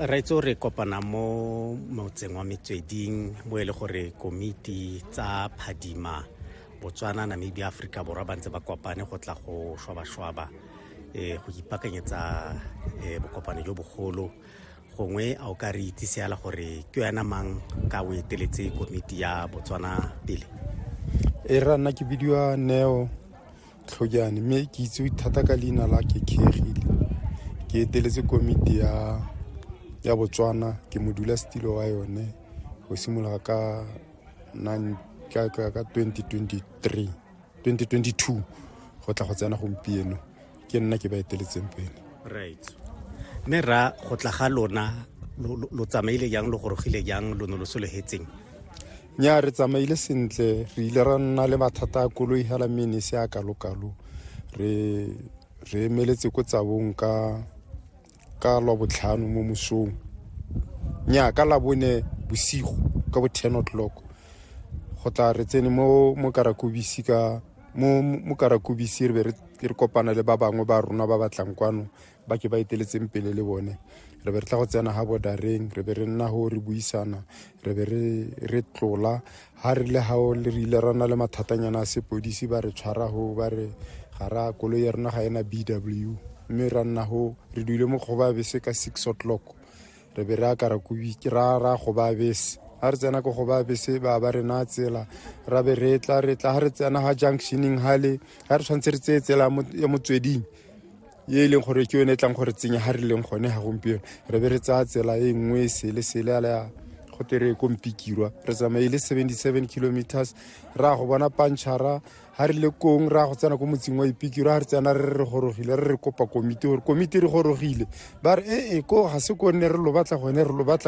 raitse o re kopana mo motseng wa metsweding mo e le gore komiti tsa phadima botswana namibia aforika borwa ba ntse ba kopane go tla go shwabashwaba um go ipakanyetsa um bokopano jo bogolo gongwe a o ka re itse seala gore ke wena mang ka o eteletse komiti ya botswana pele e ra nna ke bidiwa neo tlhojane mme ke itsewe thata ka leina la kekegile ke eteletse komiti ya ya botswana ke modula setilo wa yone go simolola ka ka 2023 2022 go tla go tsena gompieno ke nna ke ba eteletseng pele right mme ra go tla ga lona lo tsamaile jang lo gorogile jang lo ne lo sologetseng nya re tsamaile sentle re ile ra nna le mathata a koloi hela mme ne se a kalokalo re re emeletse ko tsabong ka ka lwa botlhano mo mosong nya ka labone bosigo ka bo 10 o'clock go tla re tsene mo mo karakobisi ka mo mo karakobisi re be re re kopana le ba bangwe ba rona ba batlang kwano ba ke ba eteletseng pele le bone re be re tla go tsena ga bodareng re be re nna go re buisana re be re tlola ga re le gao le re ile ra na le mathatanyana a sepodisi ba re tshwara go ba re ga ra koloi ya rona ga ena b w mme ra nna go re duile mo kgoba bese ka six o'clock re be re akara kobi ra ra kgoba bese ga re tsena ko kgoba bese ba ba re na tsela ra be re tla re tla ga re tsena ga junctioneng gale ga re tshwanetse re tseye tsela ya motsweding ye e leng gore ke yone e tlang gore tsenya ga re leng gone ga gompieno re be re tsaya tsela e nngwe sele sele ala go tere ko mpikirwa re tsamaye le 77 kilometers ra go bona pantšhara ga re le kong ra go tsena ko motseng wa ipikirwa ga re tsena re re gorogile re re kopa komiti gore komiti re gorogile ba re ee ko ga se ko nne re lo batla gone re lo batla